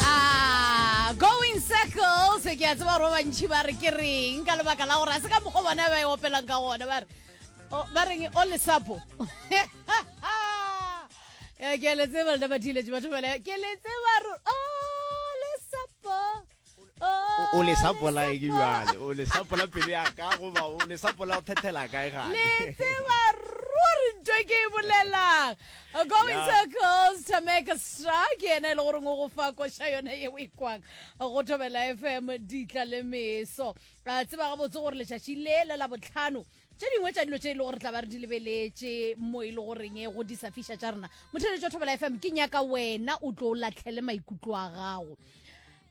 Ah, going circles ke a tseba gore ba bantšhi ba re ke reng ka lebaka la gore a se ka mokgwa bona ba e opelang ka gona ba re o- ba reng o lesapo Eh, ke a le tseba lena bathiletše batho bale ke le tseba ro- o lesapo o le sapola e ke jale o le sapola pelo ya ka goba o le sapola o thethela kae gale le tseba ruri nto e ke e bolelang going circles to make a stra ke ena e le goreng o go fa koša yone ye o e kwang go thobela fm ditla le meso a tseba gabotse gore letšatši le le la botlhano tše dingwe tša dilo tše e le gore tla ba re di lebeletše mo e le goreng e go disafiša tša rena motheletšo thobela fm ke nyaka wena o tlo o latlhele maikutlo a gago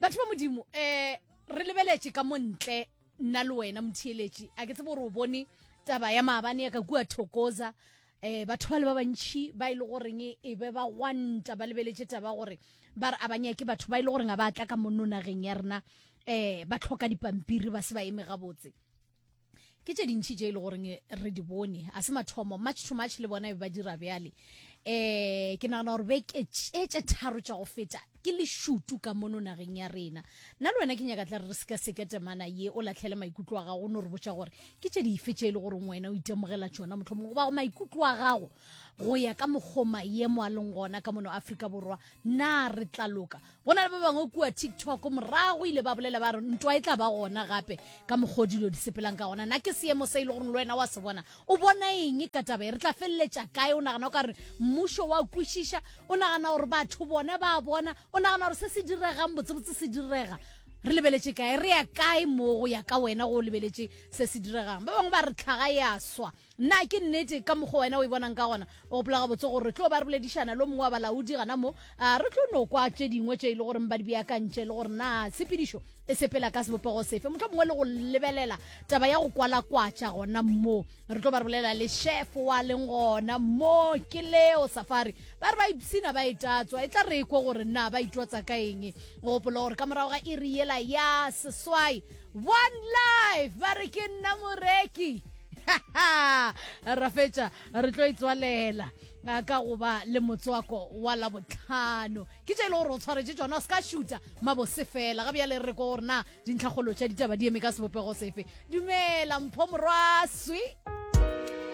batho ba modimo um re lebeletše ka mo ntle nna le wena motheeletši a ke tsebe gore o bone taba ya maabane ya ka kua thokoza um batho ba le ba bantšhi ba e le goreng e be ba gwanta ba lebeletše taba gore ba re a banyake batho ba e le goreng a ba tla ka monno nageng ya rena um ba tlhoka dipampiri ba se ba eme gabotse ke tše dintšhi tše e le goreng re di bone a se mathomo much to much le bona e ba dira bjale um ke nagana gore beke tšetše tharo tša go feta ke lešutu ka mono nageng ya rena nna le wena ke nyaka tla re re seka seke temana ye o latlhele maikutlo a gago o no re botša gore ke tše dife tše e le goreng wena o itemogela tšona motlho mongwe goba go maikutlo a gago go ya ka mokgo maemo a leng gona ka mono aforika borwa na re tla loka go na le ba bangwe kua tiktok morago ile ba bolela ba re ntwa e tla ba gona gape ka mokgwa dilo di sepelang ka gona na ke seemo se e le gore le wena wa se bona o bona eng ka taba e re tla feleletša kae o nagana o ka re mmušo wa kwešiša o nagana gore batho bona ba bona o nagana gore se se diregang botsebotse se direga re lebeletše kae re ya kae mo go ya ka wena go lebeletše se se diregang ba bangwe ba re tlhaga ya swa Na ke nnete, ka mokgwa wena o e bonang ka gona? O gopola gabotse gore re tlo ba re boledišana le o mongwe wa balaodi gana mo. A re tlo no kwa tše dingwe tše e le goreng ba di beakantše le gore na tshepedišo e sepela ka sebopego sefe, mohlomongwe le go lebelela taba ya go kwalakwatša gona mo. Re tlo ba re bolelela le šefo wa leng gona mo, ke Leo Safari. Ba re ba ipshina ba e tatswa, e tla re e kwe gore na ba itwatsa ka eng. O gopola gore ka morago ga iri yela ya seswai, One life ba re ke nna moreki ra fetša re tlo itswalela ka go ba le motswako wa labotlhano ke tše e le gore o tshwaretše tsona o se ka šuta mabose fela ga bjale re ko gore na dintlhakgolo tša ditaba di eme ka sebopego sefe dumela mpho morwaswi